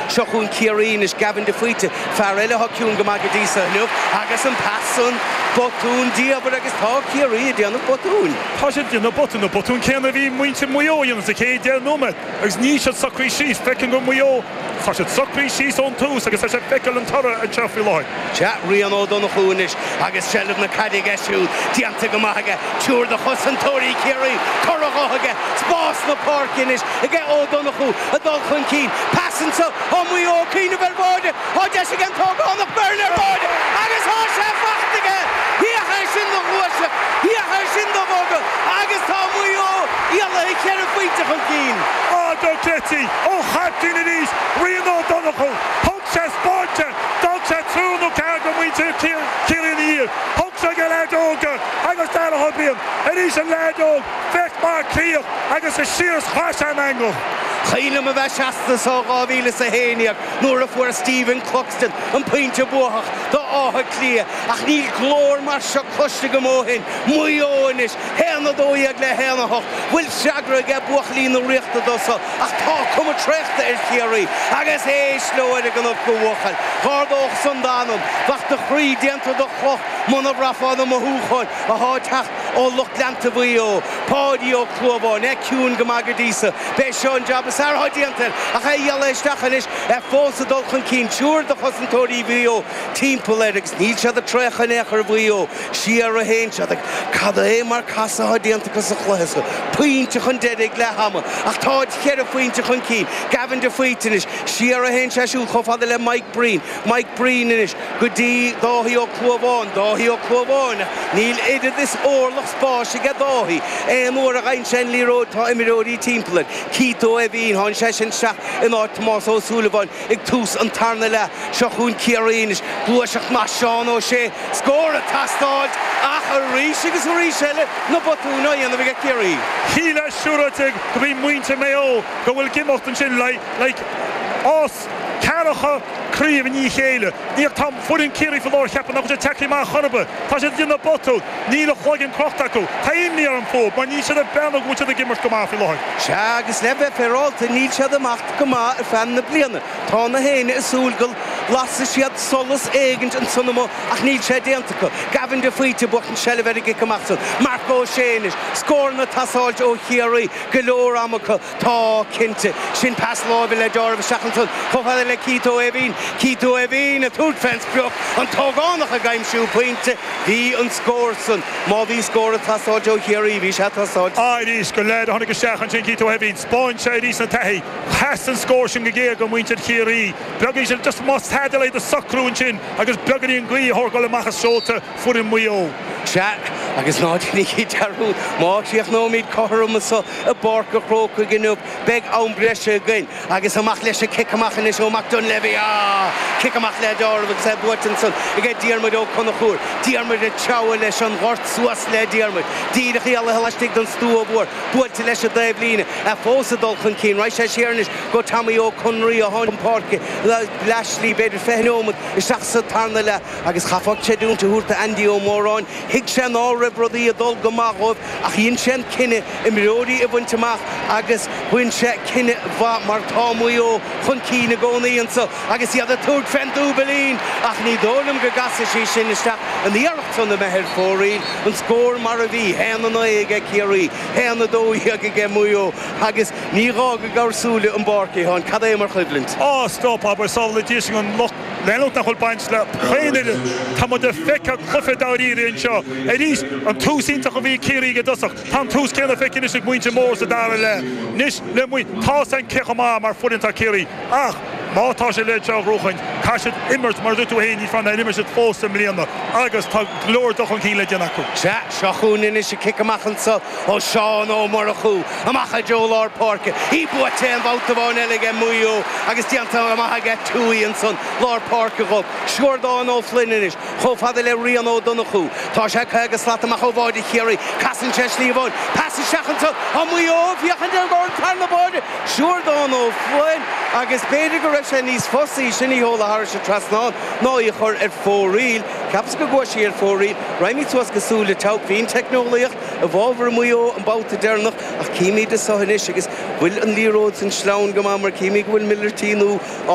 Seo chugainn Ciarraí anois, Gavin de Faoite, fear eile atá ciúin go maith go dtí seo inniu, agus an pas san, botún diamhair agus tá Ciarraí ag déanamh botúin. Tá siad ag déanamh botún, an botún céanna a bhí muintir Mhaigh Eo a dhéanamh sa chéad deich nóiméad agus níl siad socraithe síos. Feicim gur Maigh Eo atá siad socraithe síos ón tús agus tá sé ag feiceáil an toradh anseo faoi láthair. Chaith Rian Ó Donnchú anois agus seilbh na caide aige siúd déanta go maith aige, triúr de chosantóirí Chiarraí, curtha dhe aige, spás na páirce anois aige Ó Donnchú ag dul chun cinn, pas anso ó Mhaigh Eo, cuimhneamh ar bháide, thá deis ag an t-ógánach Beirne ar bháide agus thá sé faighte aige! Thiocfadh é sin do ghluaiseacht, thiocfadh é sin do bhogadh agus tá Maigh Eo éalaithe cheithre phointe chun cinn. Áit do Chití! Ó Chaiptín arís, Rian Ó Donnchú! sé spóinte. D'fhág sé triúr nó ceathrar de mhuintir Chiarraí ina dhiaidh. Thug sé ag an leaid óg é agus Darragh Beirne arís an leaid óg, bheadh mac Cliath agus is siar is chaith sé an eangach. Cuimhin liom a bheith seasta anseo 2011 nuair a fuair Stephen Cluxton an pointe buacach d'Átha Cliath ach níl glór mar seo cloiste agam ó shin, Maigh Eo anois! Haon a dó dhéag le haon a hocht. Bhfuil freagra aige buachaillí na Ríochta dó so, ach tá cuma traochta ar Chiarraí agus éist leo ar an gcnoc a bhuachaill. D'ardódh san d'anam. Bheadh do chroí déanta de chloch muna bhraithfeá na mothúcháin athá ag teacht ó lucht leanta Mhaigh Eo. Páidí Ó Clúmháin, é ciúin go maith go dtí so. B'é seo an jab is fearr athá déanta air ach é ag gearradh isteach anois, é fós ag dul chun cinn. Triúr de chosantóirí Mhaigh Eo timpeall air agus níl siad ag traochadh in aon chor i Maigh Eo. Siar a théann siad, ach cad é mar chasadh atá déanta acu sa chluiche seo. Pointe chun deiridh ag leath ama, ach táid cheithre phointe chun cinn. Gavin de Faoite anois. Siar a théann sé siúd chomh fada le Mike Breen. Mike Breen anois go dtí Dáithí Ó Clúmháin. Dáithí Ó Clúmháin. Níl oiread is orlach spáis aige Dáithí. Aon uair a gheibheann sé an liathróid tá imreoirí timpeall air. Keith Ó hÉimhín, tháinig seisean isteach in áit Tomás Ó Súilleabháin. Ag tús an tarna leath, seo chugainn Ciarraí anois. Gluaiseacht maith Seán Ó Sé, scór ag teastáil ach arís agus arís eile na botúin á dhéanamh ag Ciarraí. Shílfeá siúráilte go bhí muintir Maigh Eo go bhfuil ag imeacht ansin like os ceathrar cha craoibh i ndiaidh chéile. Níor Tá foireann Ciarraí faoi láthair, cheapfá nach bhfuil siad teaiclí maith chor ar bith. Tá siad ag déanamh botún. Níl an cloigeann crochta acu. Tá imní orm fúthu, mar níl siad ag breathnú go bhfuil siad ag imirt go maith faoi láthair. Sea, agus le bheith féaráilte, níl siad ag imeacht go maith ar feadh na bliana. Tá gach éinne ag súil go lasfaidh siad solas éigint ansan amuigh, ach níl sé déanta acu. Gavin de Faoite ag buachan an tseilbh ar an gcic amach san. Marc Ó Sé anois. Scóranna ag teastáilt ó Chiarraí, go leor ama acu. Tá, cinnte. Sin pas láimhe le deáramh isteach ansan, chomh fada le Keith Ó hÉimhín. Keith Ó hÉimhín ag tabhairt fén sprioc, an t-ógánach ag aimsiú pointe. Bhí an scór san, má bhí scór ag teastáilt ó Chiarraí, bhí sé ag teastáilt. Arís, go léir a tháinig isteach ansin Keith Ó hÉimhín. Spáin sé arís na taithí. Theastaigh an scór sin go géar ó mhuintir Chiarraí. Beagáinín sin, just más tada eile iad a shocrú ansin agus beagáinín gaoth a thógáil amach as seolta. Foireann Mhaigh Eo, Sea, agus ná déanaigí dearúd, má chríochnóimid cothrom anseo i bPáirc an Chrócaigh inniu, beidh am breise againn. Agus amach leis an cic amach anois ó Mac Doinnléibhe, á! Cic amach le deáramh agus é buailte ansan ag Diarmuid Ó Conchúir. Diarmuid ag treabhadh leis an ghort, suas le Diarmuid, díreach éalaithe laistigh den stua mhór, buailte leis an dtaobh líne, é fós ag dul chun cinn, raghaidh sé siar anois go Tommy Ó Conraoi, a tháinig chun páirce leath slí b'fhéidir fiche neomat isteach sa tarna leath. agus chaithfeá creidiúint a thabhairt d'Andy Ó Móráin, thuig sé ná raibh rudaí ag dul go maith dhóibh ach dhein sé an cinneadh imreoirí a bhaint amach agus bhain sé cinneadh mhaith mar tá Maigh Eo chun cinn i gcónaí anso agus iad ag tabhairt fén dúibilín ach ní dóigh liom go gcasfaidh sí sin isteach an iarracht san imithe ar fóraoil. An scór mar a bhí, haon a naoi aige Ciarraí, haon a dó dhéag aige Maigh Eo agus ní gá go gcabhar súile ón bpáirc, a Sheáin, cad é mar choimhlint. Á, stop, abair, samhlaídís an lucht. Leanúint nach bhfuil baint le haon fhoireann Tá muid ag feiceáil cluiche dáiríre anseo arís! An tús iontach a bhí ag Ciarraí ag an dtosach, tá an tús céanna feicthe anois ag muintir Mhaigh Eo sa dara leath. Anois le muid, tá a fhios againn cé chomh maith mar foireann atá Ciarraí, ach má tá siad le seo a ghnóchan, caithfidh siad imirt mar a dúirt tú féin, níos fearr ná a d'imir siad fós i mbliana agus tá go leor dul chun cinn le déanamh acu. Sea, seo chugainn anois an cic amach anso ó Seán Ó Murchú. Amach i dtreo lár páirce. Í buaite aon bhabhta amháin eile aige Maigh Eo agus déanta go maith aige Tuohy ansan lár páirce dhób. Siúrdán Ó Floinn anois, chomh fada le Rian Ó Donnchú. Tá sé 50 slat amach ó bháide Chiarraí. Casann sé slí amháin. Pas isteach ansan ó Maigh Eo ag féachaint ar dhorn fear na báide. Siúrdán Ó Floinn agus b'fhéidir go raibh sé níos fusaí sin í a sheoladh thairis an trasnán ná í a chur ar fóraoil. Cheapas go gcuaigh sí ar fóraoil. Raghaimid suas go Súil a' tSeabhaic. Bhí an teicneolaíocht. I bhfábhar Mhaigh Eo an babhta deireanach ach címid anso anois agus bhfuil an liathróid san sleamhain go maith mar címid go bhfuil Miller T nó á